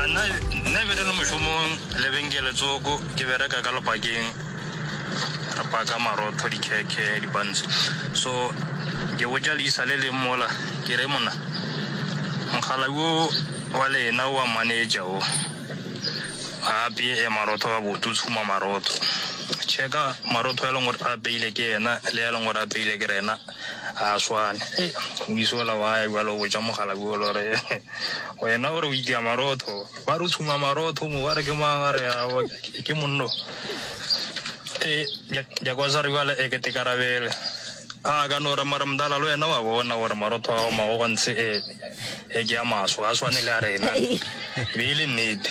Nna nna be re le mošomong lebenkele tsoko ke bereka ka lepakeng re paka marotho dikhekhe dibantse so ke botša leisa le leng mola ke re monna mokgala wo wa lena wa manager o ga apeye marotho ga botse o tshuma marotho checka marotho a leng gore a apeile ke ena le a leng gore a apeile ke rena Ga a swane. Hei, o iso o la wa ya bjalo o botša mogala bjo le gore wena o re o itia marotho. Ba re o tshuma marotho mo ba re ke mang a re awa ke monno. E, Jakosari bjale e kete karabele. A ka no re mara mdala le wena wa bona gore marotho a gago magogontse e, e ke a maswe ga a swane le a rena. Be e le nnete.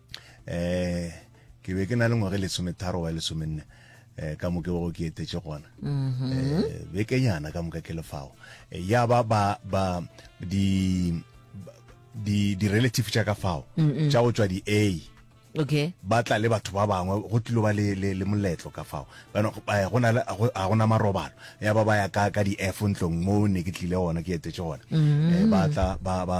eh ke be ke na le ngwage lesometharo wa lesomenne eh ka moke go ke etetše gona mm-hmm. eh bekenyana ka moka ke lefago eh, ya ba ba ba di di di relative tša ka fao tša go tswa di a okay ba tla le batho ba bangwe go tlilo ba le le moletlo ka fao bana eh, go na le a gona marobalo ya ba ba ya ka ka di F ntlong mo ne ke tlile gona ke etetse gona mm-hmm. eh, ba tla ba ba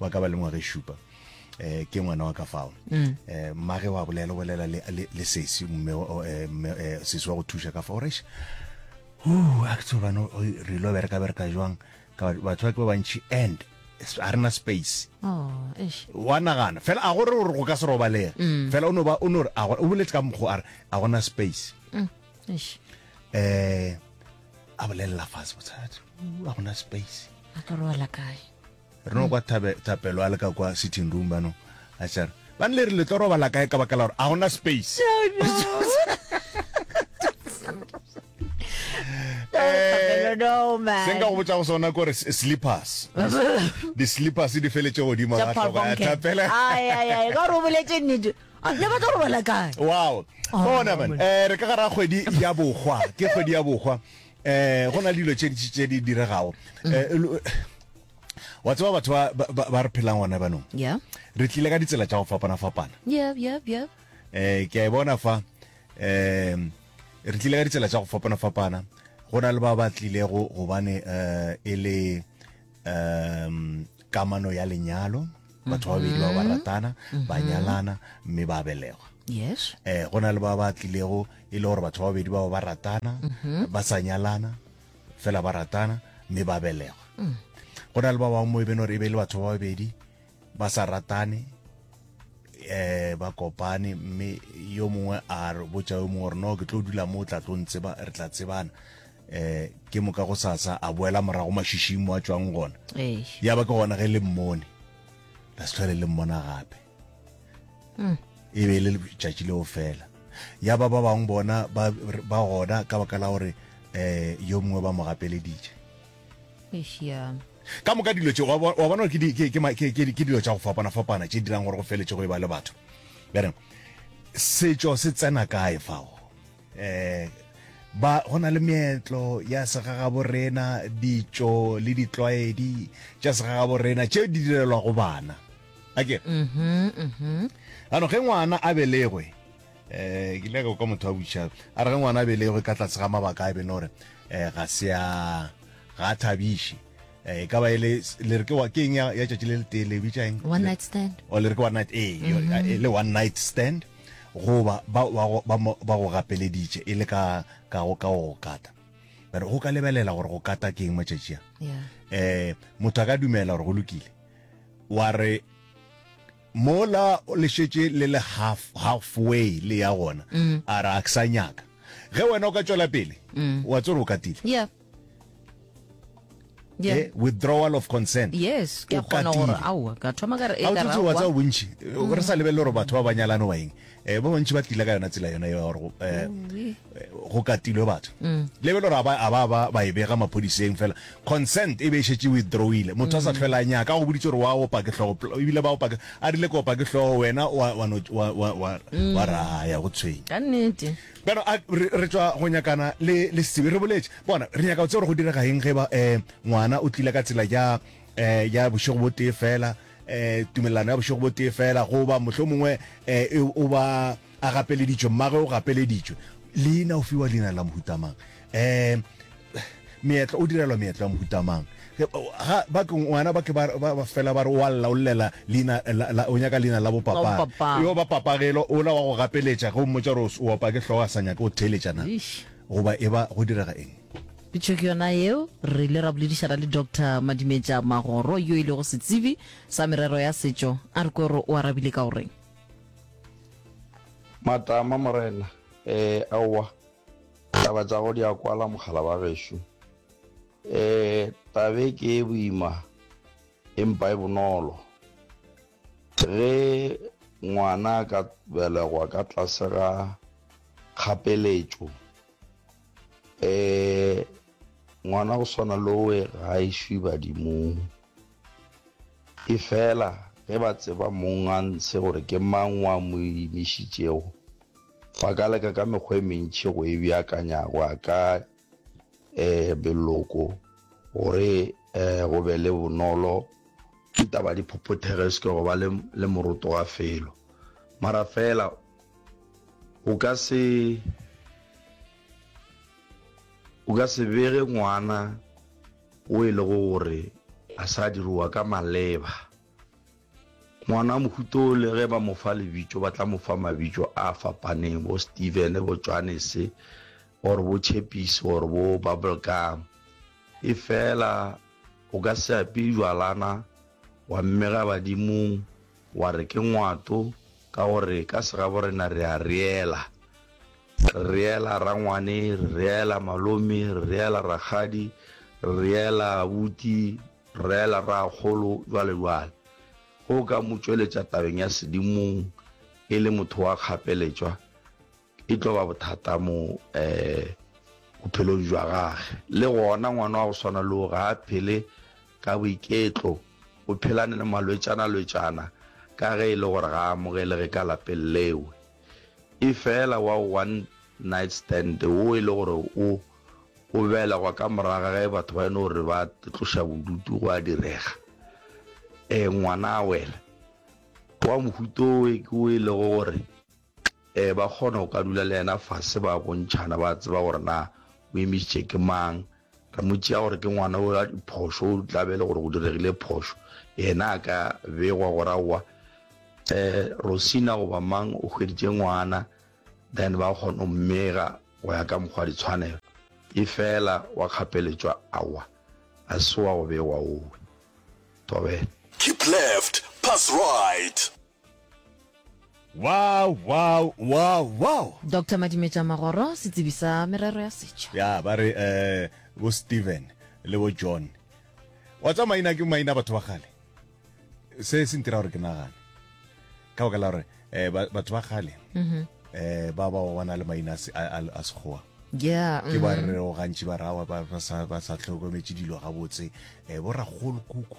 wa ka ba le ngwaga e šupa eh ke ngwana wa ka fao mm. eh mmage wa bolela bolela le le sesi mme eh, eh sesi wa go thuša ka fao resh uh a tso bana re lo bereka bereka jwang ka batho ba ke ba bantši and a rena space oh, wa nagana fela a gore gore go ka se robalega mm. fela o no ba o no re a gore o boletse ka mokgo a re a gona space mm, eh a bolelela fase botsadi a gona space a ka robala kae re no kwa thapelo a le ka kwa sitting room bano a tšare ba nle re le tlo robala kae ka bakala gore a gona space se nka go botsa go sona kore slippers di-slippers di feletse godimo ga tlhogo ya thapela ka gore o boletse nnete Ah, ne ba tlo robala kae wow bona oh, man eh re ka gara kgwedi ya bogwa ke kgwedi ya bogwa eh go na le dilo tše dintši tše di diregago eh, lo- wa tseba batho ba- ba ba- ba re phelang gona banong yeah re tlile ka ditsela tša go fapana-fapana yeah yeah yeah eh ke a e bona fa um re tlile ka ditsela tša go fapana-fapana go na le ba ba tlilego gobane um e le um kamano ya lenyalo batho ba babedi ba ba mm-hmm. ratana ba mm-hmm. nyalana mme ba belegwa yes eh go na le ba ba tlilego e le gore batho ba babedi ba ba ratana mm-hmm. ba sa nyalana fela ba ratana mme ba belegwa mm. go na le ba bangwe mo e beng gore e be e le batho ba babedi ba sa ratane eh ba kopane mme yo mongwe a re botša yo mongwe gore no ke tlo dula mo o tla tlo ntseba re tla tsebana eh ke moka go sasa a boela morago mashišing mo a tswang gona ya ba ke gona ge le mmone la se tlhole le mmona gape hmm. e be e le letšatši leo fela ya ba ba bangwe bona ba gona ka baka la gore um yo mongwe ba mo gapeleditše ka moka dilo tse wa bona ke dilo tsa go fapana-fapana tse dirang gore go feletse go e ba le batho bereng setšo se tsena kae fao um ba go na le meetlo ya segagabo rena ditšo le ditlwaedi tša segagabo rena tše di direlwa go bana akere mm-hmm, mm-hmm. ano ge ngwana a belegwe eh ke leka ka motho wa botšhaba a re ge ngwana a belegwe ka tlase ga mabaka a bene gore eh ga se a ga a thabiše eh e ka ba ele le re ke wa keng ya ya tšatši le le tee le bitša eng one night stand o le re ke one night eh yo- mm-hmm. e le one night stand goba ba ba go- ba mo- ba go gapeleditše e le ka ka go ka go kata but go ka lebelela gore go kata ke eng matšatši a yeah eh motho a ka dumela gore go lokile wa re Mola le šetše le le half, half way le ya gona, a re a ke sa nyaka. Ge wena o ka tšwela pele, wa tsore o katile. Yeah. Yeah. Eh, withdrawal of consent. Yes, ke a O kgona gore katile. aowa, ka thoma ka re, Ha o ekara tsotse wa aowa. tseba bontši, re sa lebelele gore batho ba ba nyalane ba eng. eh ba bantši ba tlile ka yona tsela yona ya gore go- eh, eh, go katilwe batho le be le gore a ba- a ba ba ba e bega maphodiseng fela consent e be e šetse withdrawile motho a sa tlhwela a nyaka a go boditse gore wa opa ke tlhogo pl- ebile ba opa ke- a rile ke opa ke tlhogo wena wa- wa no- wa- wa- wa- wa raya go tshwenya ka nnete bjano a- re re tswa go nyakana le le sebe re boletse bona re nyaka go tse gore go direga eng ge ba um ngwana o tlile ka tsela ya um ya bošego bo tee fela eh, tumelelano ya bošego bo tee fela goba mohlho mongwe eh, e, o ba a gapeleditšwe mmage o gapeleditšwe leina o fiwa leina la mohutamang um eh, meetlo o direlwa meetlo ya mohutamang ngwana ba ke fela ba re wa lla o llela leina o nyaka leina la bopapa yo ba papagelo ola wa go gapeletša ge o mmotsa gore o opa ke tlhogo a sa nyake o theletšana goba e ba go direga eng Pitšo ke yona yeo. Re ile ra boledišana le Doctor Madimetša Magoro yo e lego setsebi sa merero ya setšo. A re kwe gore o arabile ka go reng. Matama, Morena, ee, aowa, taba tša go di a kwala, mogala wa gešo. Ee, taba e ke e boima empa e bonolo. Ge ngwana a ka belegwa ka tlase ga kgapeletšo, um ngwana go swana lowe ga a išwi badimong e fela ge ba tseba mong a ntshe gore ke mang wa mo imišitšego ba ka leka ka mekgwa e mentšhi go e beakanyago a ka um beloko gore um go be le bonolo ke taba diphophothege se ke go ba le moroto wa felo mara fela O ka se o ka se bege ngwana o e lego gore a sa diroa ka maleba. Ngwana wa mohuta o le ge ba mo fa lebitso ba tla mo fa mabitso a fapaneng bo Steven, bo Johannes or bo Chappies or bo Bubblegum. E fela o ka se ape jwalana wa mmega badimong Wa re ke ngwato ka gore ka segaborena re a reela. Re reela rangwane, re reela malome, re reela rakgadi, re reela abuti, re reela rraakgolo, jwalo jwalo. Ge o ka mo tšweletša tabeng ya sedimong e le motho wa kgapeletšwa, e tlo ba bothata mo um bophelong jwa gage le gona ngwana wa go swana leo ga a phele ka boiketlo o phelane le malwetšana-lwetšana ka ge e le gore ga a amogelege ka lapeng leo e fela wa one night stand wo e le gore o o belegwa ka moraga ge batho ba e no gore ba tloša bodutu go a direga um ngwana a wela wa mohuto o e ke o e lego gore Ee, ba kgona go ka dula le yena fase ba bontšhana, ba tseba gore na o emisitše ke mang. Re mo tšea gore ke ngwana o a diphošo, o tla be le gore go diregile phošo, yena a ka begwa gore aowa um Rosina goba mang o hweditše ngwana, then ba kgona go mmega go ya ka mokgwa ditshwanelo. E fela wa kgapeletšwa, aowa ga se wa go begwa owe. Thobela. Keep left, pass right. Wow, wow, wow, wow. Doctor Madimetša Magoro, setsebi sa merero ya setšo. Ya, ba re eh, bo Steven le bo John. Wa tsa maina ke maina batho ba kgale. Se se ntira gore ke nagane. Ka baka la gore eh, batho ba kgale mm-hmm. eh, ba ba bona le maina a sekgowa. yeah ke ba mm-hmm. re o gantši ba rawa ba sa tlhokometse dilo gabotse um eh, bo ragolo kuku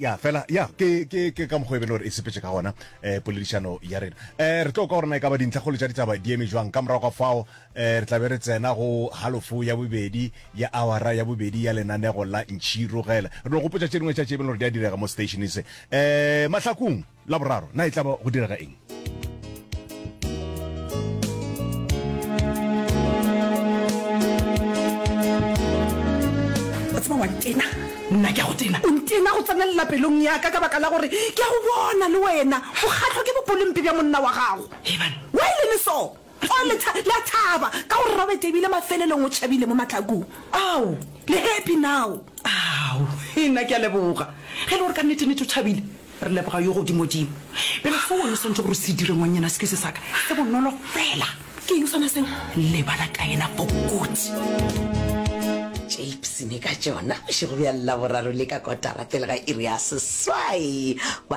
ya fela ya ke ke ke ka mokgwa e bele gore e sepetse ka gona eh poledišano ya rena eh re tlo ka gorena e ka ba dintlha kgolo tša ditaba di eme jwang ka morago ga fao eh re tlabe re tsena go halofo ya bobedi ya awara ya bobedi ya lenanego la ntšhirogela re no gopotsa tše dingwe tša tše e bele gore di a direga mo stationeng se eh mahlakong La boraro, na e tla ba go direga eng? o tseba wa ntena nna ke a go tena o ntena go tsenelela pelong yaka ka baka la gore ke a go bona le wena o kgatlhwa ke bopolompe bja monna wa gago ebane wa e leme so Ao, le tha, le a thaba, ka gore Robert ebile mafelelong o tšhabile mo mahlakong. Ao, le happy now. Ao, nna ke a leboga. Ge e le gore ka nnete-nnete o tšhabile, re leboga Yo Godimo-dimo. Bjale seo wena o swanetše gore o se dire, ngwanyana, se ke se sa ka, se bonolo fela. Ke eng sona seo? Lebala ka yena bokoti. Tšeipsene ka tšona bošego bja Laboraro le ka kotara pele ga iri ya seswai, ba.